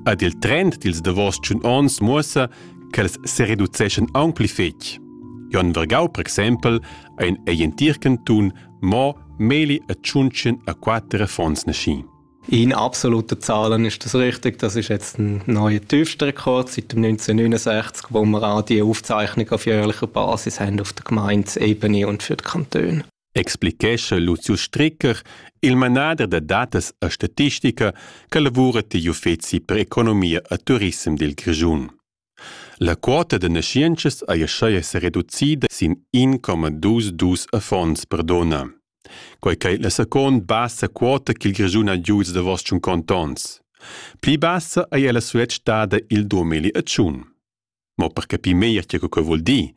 Ed il trend dils davos tschun onns muossa ch'els sereduceschan aunc pli fetg. Jon Vergau, per exempel, ha in ei entir cantun mo meli e tschuntschen a quater affons naschi. In absoluter Zahlen ist das richtig. Das ist jetzt ein neuer Tiefstrekord seit dem 1969, wo wir auch die Aufzeichnung auf jährlicher Basis haben auf der Gemeindeebene und für den Kanton. explichescha Lucio Stricker, il manader da datas e statistica che lavura digl uffeci per economia e turissem dil Grischun. La quota da naschientschas ei aschia sereducida sin 1,22 affons per donna. Quei ch'ei la second bassa quota ch'il Grischun ha giu da vos tschun contons. Pli bassa ei ella sulet stada il 2001. mo per capir meglier tge che vul dir,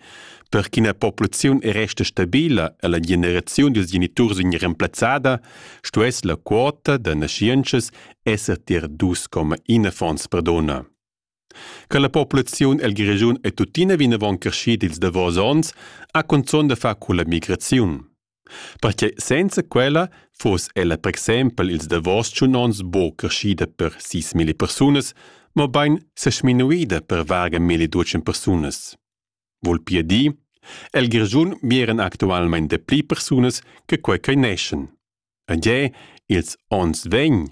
per ch'ina populaziun resta stabila e la generaziun dils geniturs vegn remplazzada, stuess la quota da naschientschas esser tier dus coma in affons per donna. Che la populaziun el regiun è tuttina vinavon creschida ils davos onns ha cunzun da far culla migraziun. Perche senza quella fuss ella per exempel ils davos tschun ons buca creschida per sis milli persunas, mobein sesminuida per varga milli duatschen persunas. Vul pia dir, el Grischun mieren actualmein dapli persunas che quei ch'ei neschen. E gie, ils onns vegn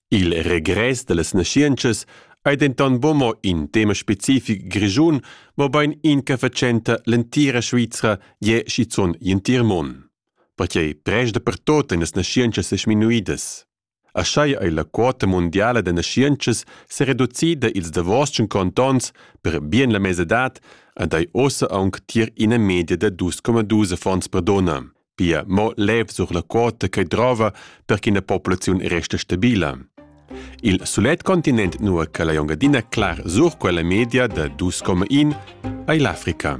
Il regress dallas naschientschas ei denton buca mo in tema specific grischun, mobein in che fatschenta l'entira Svizra gie schizun gl'entir mund. Perquei prest dapertut ein las naschientschas sesminuidas. Aschia ei la quota mundiala da naschientschas sereducida ils davos tschun contonts per bien la mesadad ed ei ussa aunc tier ina media da dus coma dus affons per donna. pia mo lev sur la quota che drova per ch'ina populaziun resta stabila. Il sulet continent nua che la jongadina clar sur quella media da 2,1 ei l'Africa.